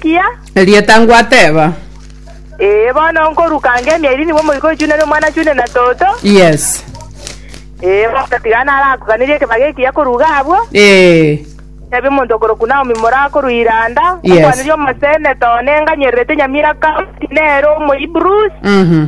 Kia. Erieta ngwateba. Ee, bono nkoruka nge emieri nigo omoika oichune na omwana achune na toto. Yes. Ee, bagatiga narakoganeria ekebaga ekiya koruga abwo. Ee. Tebia omonto okorokwa Naomi moraa korwa Iranda, Yes. okwanire omosene, too nenganyererete nyamira Kaosi, nere Omohibrus. Mhm.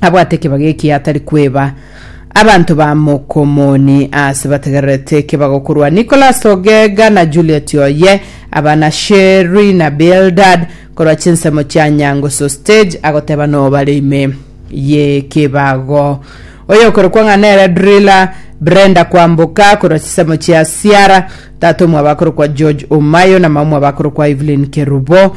abwate ekebago eki atari kweba abanto ba mokomoni ase bategererete ekebago korwa nicolas ogega na juliet oye abana sheri na bildad korwa chinsemo chia nyangusu stage agoteba nobare ime yekebago oyo okorokwa ng'a nere driller brenda kwamboka korwa chisemo chia siara tata omwabo akorokwa george omayo na mama omwabo akorokwa evelyn kerubo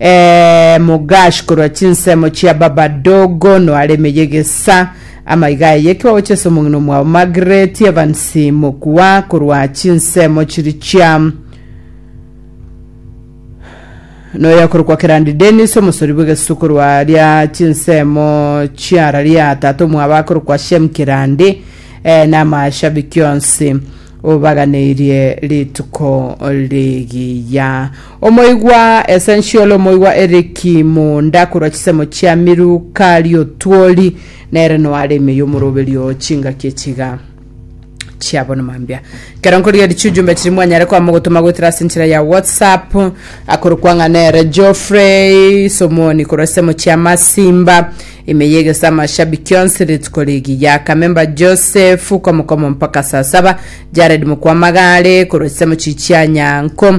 Eeh Mugash korwa chinsemo chia baba dogo noare emeye gesa amaiga aye ki bagocha ase omong'ina omwabo Margaret Evans Mokua korwa chinsemo chiri chia noyo akorokwa Kerandi Dennis omosori bw'egesu korwa ria chinsemo chiara ria tata omwabo akorokwa Shem Kerandi eh, na amashabiki onsi obaganeirie rituko rigiya Omoigwa Essential, Omoigwa Eric Muunda korwa chisemo chia Miru Kariotwori nere noare ime y'omoroberio oo chingaki echiga chiabo ni mambia. Kero nkorigeria chiujumbe chiri mwanyare kwama ogotoma goetera ase enchera ya WhatsApp akorokwa ng'a nere Geoffrey Somoni korwa chisemo chia Masimba ime y'egesama Shabiki onsi rituko rigiya Kamemba Joseph komokomo mpaka saa saba Jared Mokwamagare korwa chisemo chichia Nyanko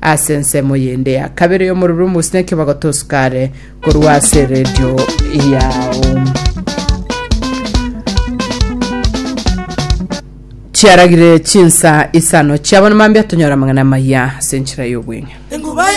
Ase ensemo yende ya kabere y'omoruru mosineke bagotosukare korwa ase redio yao. chiaragire chinsa isano chiabona mambia tonyora amang'ana amaya ase enchera y'obweng'e